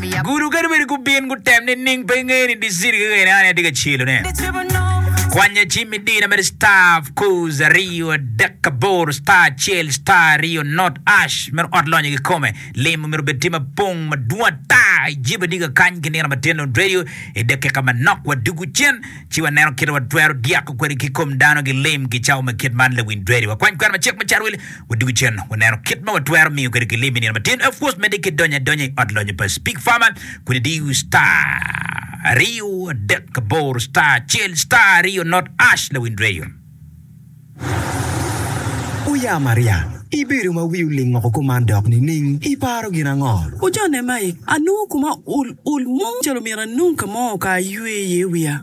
Gudo kadi bed gubin gutem nining pe ingeyo ni diciti kekeni an aye atye ka celone. Kwanya cim idina mere star of course aryo adek aboro star acel star aryo not ash mere ot lonyo kikome lim omito bed tye mapong madwong ata ijebe ni kakany ki nino matin on radio i dakika manok wadugu cen ci waneno kite watwero dyako kwede ki kom dano gilim gicawo ma kit man lawiny radio wakwany kwena macek me carwil Wadwogi cen, waneno kit ma watwero miyo kwede kilim i nino matin. Of course, medde ki donyo adonya i ot lonyo pa Speak Farmer, kodi diyo star aryo adek aboro star acel star aryo not ash lawiny reyo. Oya Maria, ibedo ma wi oling woko kuman dok nining? Iparo gin ango? Ojone mai, anongo koma ul ul mo calo myero anong ka mo ka aywe iye wiya.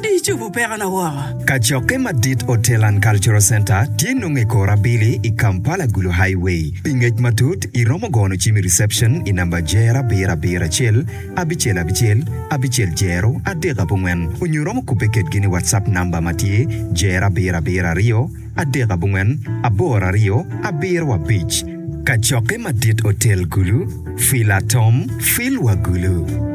Di icubu pekona woko. Kacokke madit Hotel and Cultural Centre tye nongo i kor abili i Kampala Gulu Highway. Pi ngec matut i romo gono cim i reception i namba Jer abiro abiro acel abicel abicel abicel Jero adek abongwen onyo romo kubbe kedgi ni WhatsApp namba ma tye Jer abiro abiro aryo adek abongwen aboro aryo abiro abic Kacokke madit Hotel Gulu Fila Tom Phil wa Gulu.